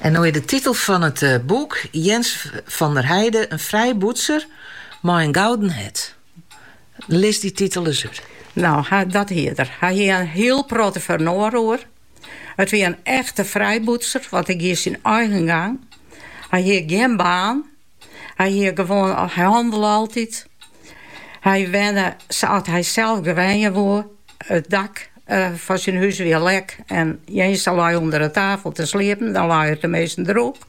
En no is de titel fan it boek Jens van der Heide, in frijbûtser mei in gouden hert. Lis dy titel ris út. No, dat hie er. Hy hie in hiel protte fernoar oer. It wie in echte frijbûtser, want hy gie syn eigen gang. Hy hie gjin baan. Hy hie gewoan, hy hannele altyd. Hy wenne sa't hy sels wenje woe. It dak fan syn hûs wie lek en Jense lei ûnder 'e tafel te sliepen. Dan lei er teminsten drûch.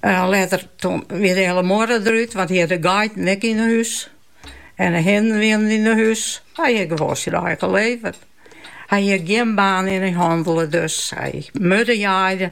Letter wie de hiele muorre derút, want hy hat de geiten ek yn 'e hûs en de hinnen wienen yn 'e hûs. Hy hie gewoan syn eigen leven. Hy hie gjin baan en hy hannele, dus hy murde jaaide.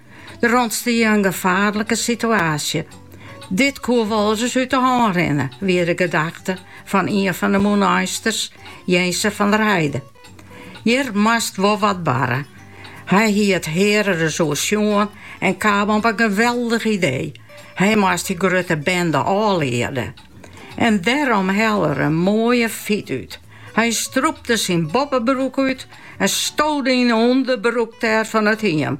Der ûntstie in gefaarlike situaasje. Dit koe wolris út de hân rinne, wie de gedachte fan ien fan de mûneisters, Jense van der Heide. Hjir moast wol wat barre. Hy hie it hear ris oersjoen en kaam op in geweldich idee, hy moast dy grutte bende ôfliede. En dêrom helle er in moaie fyt út. Hy strûpte syn boppebroek út en stode yn 'e ûnderbroek dêr fan it hiem.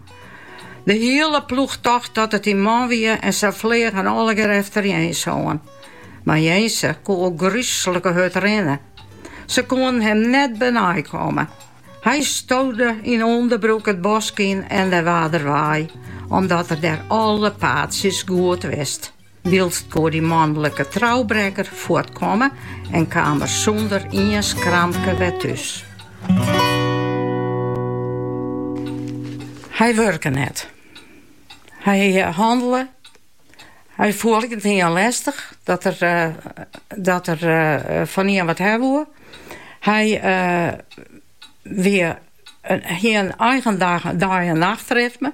De hiele ploech tocht dat it dy man wie en se fleagen allegear efter Jens oan. Mar Jense koe al grúslike hurd rinne. Se koenen him net benei komme. Hy stode yn ûnderbroek it bosk yn en dêr waard er wei, omdat er dêr alle paadsjes goed wist. Wilens koe dy manlike troubrekker fuortkomme en kaam er sûnder ien skramke wer thús. Hy wurke net. Hy eh, hannele. Hy foel net ien lestich dat er, eh, dat er eh, fan ien wat hawwe woe. Hy uh, wie, hie in eigen dag, dei- en nachtritme.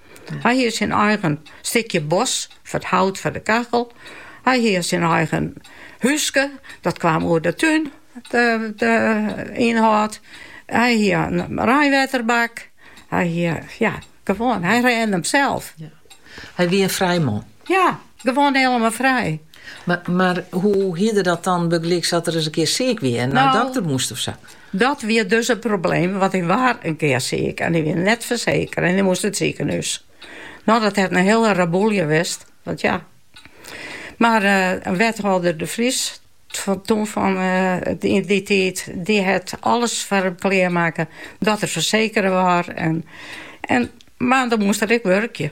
Hy hie syn eigen stikje bos foar it hout foar de kachel. Hy hie syn eigen húske, dat kaam oer de tún, de ynhâld. Hy hie in reinwetterbak. Hy hie, ja, gewoan, hy rêde him sels. Hy wie in frij man. Ja, gewoan hielendal frij. Mar hoe hie er dat dan bygelyks as er ris in kear siik wie en nei de dokter moast of sa? Dat wie dus it probleem, want hy waard in kear siik en hy wie net fersekere en hy moast yn 't sikehûs. No, dat hat in hiele reboelje west, want ja. Mar eh, wethâlder De Vries, toen fan eh, in dy tiid, dy hat alles foar him klearmakke dat er fersekere waard. En, en, mar dan moast er ek wurkje.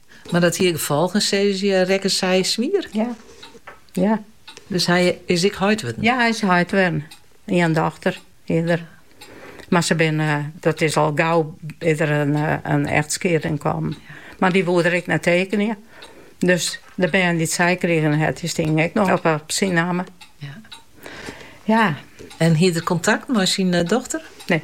Mar dat hie gefolgen, se rekke swier? Ja. ja. Dus hy is heit wurden? Ja, hy is heit wurden. Ien dochter hie er. Mar se binne, eh, dat is al gau yn in, eh, in echtskieding kommen. Mar dy woed er ek net tekenje. Dus de bern dy't sy krigen hat dy stiene ek noch op, op syn namme. Ja. ja. En hie er kontakt mei syn eh, dochter? Nee.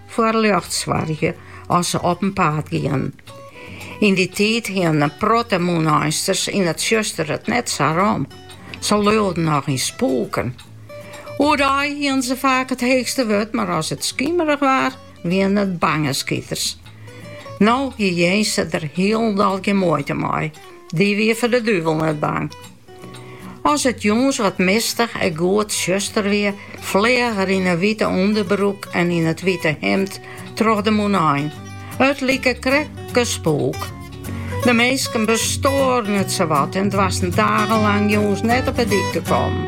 foar ljocht soargje as se op in paad gienen. Yn dy tiid hienen in protte Mûneinsters yn it tsjuster it net sa rom. Se leauden noch yn spûken. Oerdei hienen se faak it heechste wurd, mar as it skimerich waard, wienen it bange skiters. No hie Jense der hielendal gjin muoite mei. Dy wie foar de duvel net bang. As it jûns wat mistich en goed tsjuster wie, fleach er yn 'e wite ûnderbroek en yn it wite himd troch de Mûnein. It like krekt in spûk. De minsken bestoaren it sawat en doarsten dagenlang jûns net op 'e dyk te kommen.